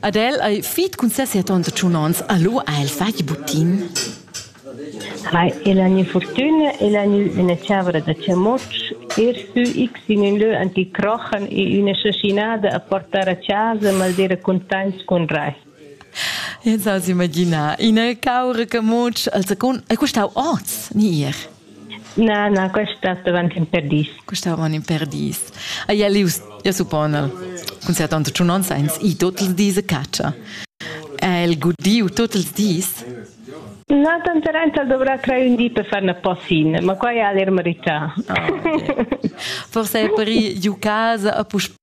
Ad el ei fit cun ses siat onns e tschun onns, a lu ha el fatg butin. Ha el ha ina fortuna, el ha ina chavra da chamutsch, er sü x in ün lö anticrochen e üna schachinada a portar a casa, maldira contents cun rai. Ins ha s'imaginà ina caura camutsch al secund, è custau oz ni ier? Na, na, questa davanti in perdis. Questa davanti in perdis. Ah, ja, lius, ja suppona. Cun sia tanta tschunonza ins i tot ils dis a caccia. Ha el gudiu tot ils dis? Na, tanta renza dovrà tre un di per far una possin, ma qua è l'ermarità. Ah, okay. Forse è per giù casa a puspè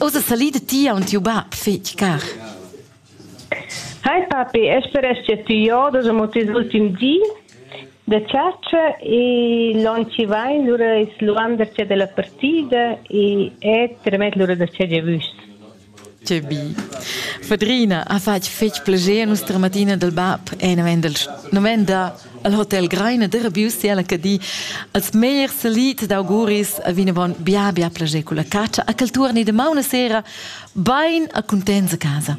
Ossa salida ti aun tiu bab fetg car. Hai papi, esperesce ti jo da mo tes ultim di da chatscha e l'on chi vain lura es luandercia della partida e e tremet lura da che giavüs. Tgebi. Fadrina ha fatg fetg plascher nostra matina dal bab e novenda al hotel Greina de Rabius e alla Cadi als meglier salit d'auguris a vinavon bia bia plascher con la catscha a cultura ni de mauna sera bein a contents a casa.